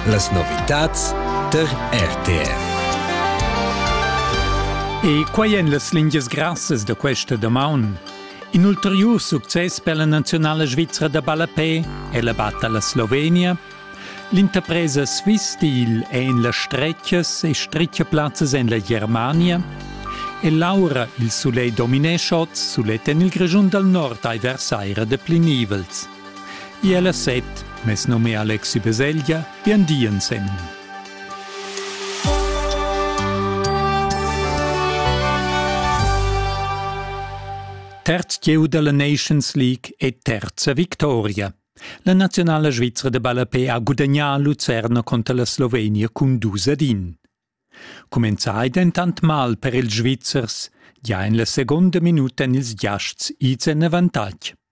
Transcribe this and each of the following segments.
Las novitads tar RTR. E quai èn las lingias grassas da questa damaun. In ulteriur success per la nazionala svizra da ballapè è la batta alla Slovenia. L'interpresa Swiss Steel è en las stretgas e stretgaplazzas en la Germania. E l'aura, il soleil dominescha oz sulet en il Grischun dal nord ai versaira da plinivels. Ier la set, mes num è Alexi Beselgia, bien di ensemen. Terz gieu della Nations League e terza victoria. La nazionale svizra de Ballapé ha gudagnà Lucerna contro la Slovenia cun 2 ad 1. Comenzai dentant mal per ils Svizzers, ja in la seconda minuta en ils giasts ids en avantatg.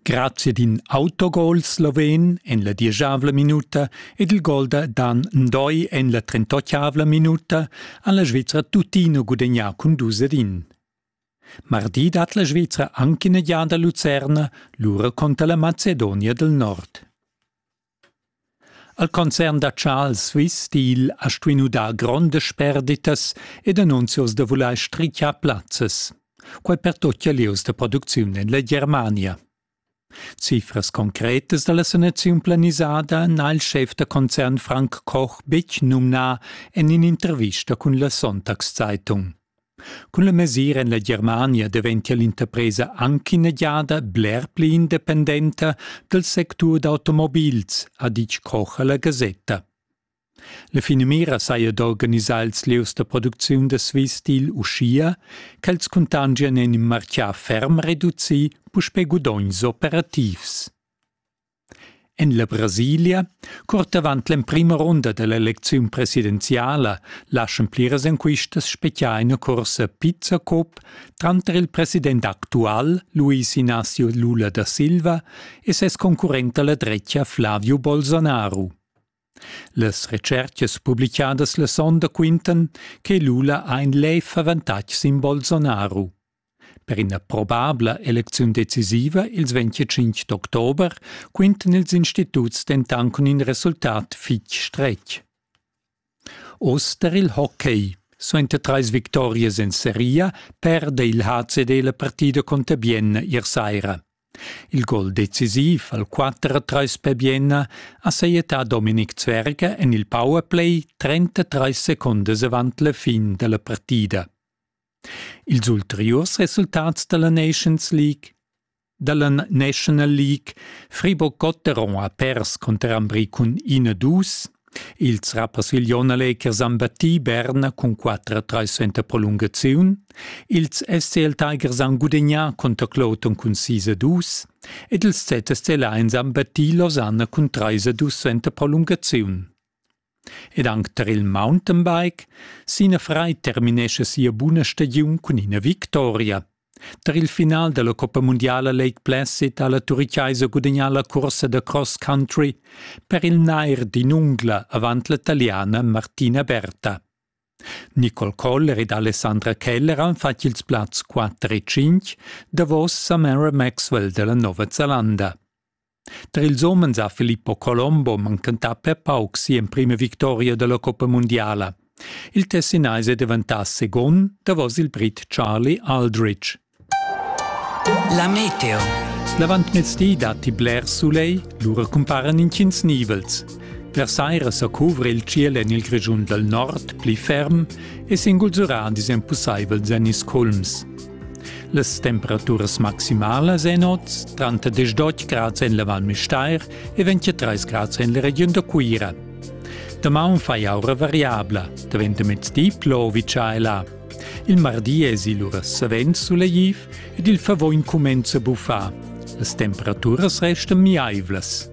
Grazia d'in autogol sloven en la dieschavla minuta ed il gol da Dan Ndoi en la trentotgavla minuta ha la Svizra tuttina gudagnà cun dus ed in. Mardi dat la Svizra anche ina giada Lucerna, lura conter la Macedonia del Nord. Al concern da Charles Swiss digl ha stuinu dar grondas sperditas ed annunzios da vuler strichar plazzas. Quei pertutgia lieus da producziun en la Germania. Cifras concretas dalla sanaziun planisada n'ha il schef da concern Frank Koch betg numnà en in'intervista cun la Sonntagszeitung. Cun la mesira en la Germania daventia l'interpresa anc ina giada bler pli independenta dal sectur d'automobils, ha ditg Koch a la gasetta. La finamira saja d'organisar ils lieus da producziun da Swissteel uschia ch'els cuntangian en in martgà ferm reducì puspè gudogns operativs. En la Brasilia, curt avant l'emprima runda da l'elecziun presidenziala, laschan pliras enquistas speziar ina cursa Pizza Cop tranter il president actual Luis Inácio Lula da Silva e ses concurrent alla drecha Flavio Bolsonaro. Las retschertgas publicadas la sonda quintan che Lula ha in lev avantatg sin Bolsonaro. Per ina probabla elecziun decisiva ils 25 d'october quintan ils instituts dentant cun in resultat fitg stretg. Oz der il hockey. Suenter trais victorias en seria perde il HCD la partida conter Bienna ier saira. Il gol decisiv al 4-3 per Bienna ha sajettà Dominik Zwerger en il powerplay 33 secondas avant la fin da la partida. Ils ulteriurs resultats dalla Nations League dalla National League Friburg Gotteron ha pers cunter Ambri cun 1-2. Ils rappersiglion Lakers han battì Berna cun 4-3 suenter prolungaziun. Ils SCL Tigers han gudegnà cunter Clouton cun 6-2 ed ils ZSC Lions han battì Lausanne cun 3-2 suenter prolungaziun. Ed anc tar il mountainbike, Sina Frei terminescha sia buna stagiun cun ina victoria. Tar il final da la Coppa mundiala Lake Placid ha la Turichaisa gudagnà la cursa da cross country per il nair d'in ungla avant la taliana Martina Berta. Nicole Koller ed Alessandra Keller han fatg ils plazs 4 e 5 davos Samara Maxwell da la Nova Zelanda. Tar ils umens ha Filippo Colombo manchentà per pauc si'emprima victoria da la coppa mundiala. Il Tessinaise è daventà secund davos il Brit Charlie Aldrich. La meteo. L'avantmezdi datti blers soleil, lura cumparan intgins nivels. Per saira sa cuvra il ciel en il Grischun dal nord pli ferm e s'ingulzurà disempussaivel Zennis Kulms. Las temperaturas maximalas en oz tranter 18 grads en la Val Müstair e 23 grads en la regiun da Cuira. Damaun fai aura variabla, daventa mezdi plovi tschaila. Il mardi esi lura savens sulegtiv ed il favoin cumenza a buffar. Las temperaturas restan miaivlas.